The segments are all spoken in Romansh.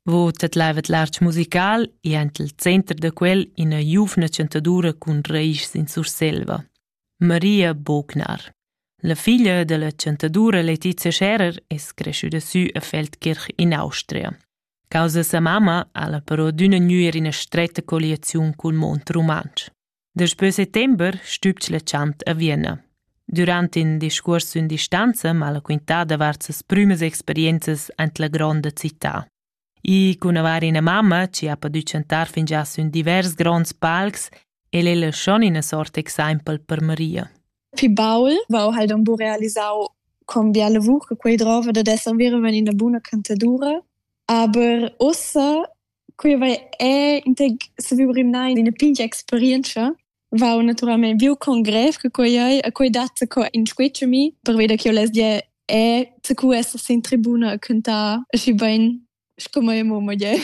Vo tedlaivet l'artg musical e aint il center da quel ina giuvna chantadura cun raischs in Surselva, Maria Bognar. La figlia della chantadura Letizia Scherer es creschüda sü a Feldkirch in Austria. Causa sa mamma ha la però d'üna gnüer ina stretta colliaziun cul mond rumantsch. Daspö settember stübg la chant a Vienna. Durant in discuors sün distanza m'ha la quintà davart ses prümas experienzas aint la gronda città. I cun avair ina mamma chi ha podü chantar fingià sün divers gronds palcs, el ella schon ina sort exaimpel per Maria. Fi baul vau halt am bu realisau con bia lavur che quei drova da esser veraven in una buna cantadura, aber ossa Quei vaia è intec saviu rimnar ina pigna experientscha. Vau naturalmein viu con grev che quei ei e quei dat co inscuetsch a mi perveda ch'jeu less dir è co esser sin tribuna e cuntar aschi bein sco mia mumma gie.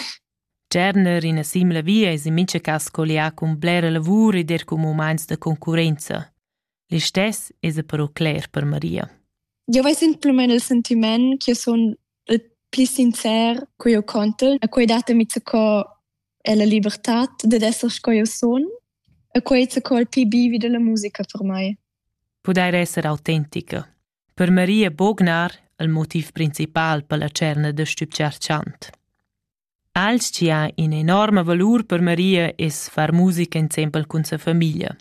Tscharner ina simla via es in mincha cas collià cun blera lavur ed er cun mumaints da concurrenza. Listess esa però cler per Maria. Eu ves implümen il sentiment ch'io sun il pli sincer co eu contel, a cui datemi co è la libertad dad esser sco eu sun e quei co il pli bivi della musica per mai. Pudair esser autentica. Per Maria Bognar il motiv principal per la cerna da stübgiar chant. Als chi ha in enorma valur per Maria es far musica insempel cun sa famiglia.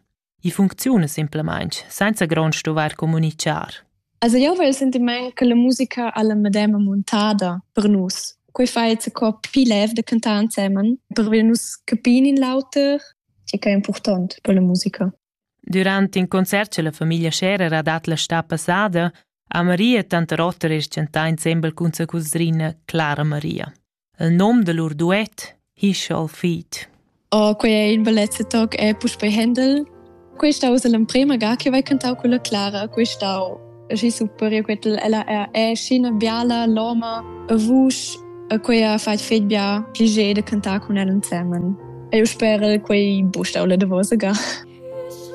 I funcziuna simplamain senza grond stuvair communitgar. Also io vel il sentiment che la musica ha la medema montada per nus. Quei fa jetzt co più lev da cantare insieme, per wir nus capire in l'auter, che è important per la musica. Durante in concert che la famiglia Scherer ha dat la sta passada, ha Maria tanta rotter e chantà insembel cun sa cusrina Clara Maria. Il nom da lur duet Hischal Feet. Oh, quei è in bellezza toc è puspei Händel. Questa usa l'emprema ga che vai cantau con la Clara, questau. Aschi super, io quetel ella è, è scena biala, loma, a vusch, a quei ha fait fet bia piacere de cantar con ella insieme. E io spero quei bustau le de vosa ga.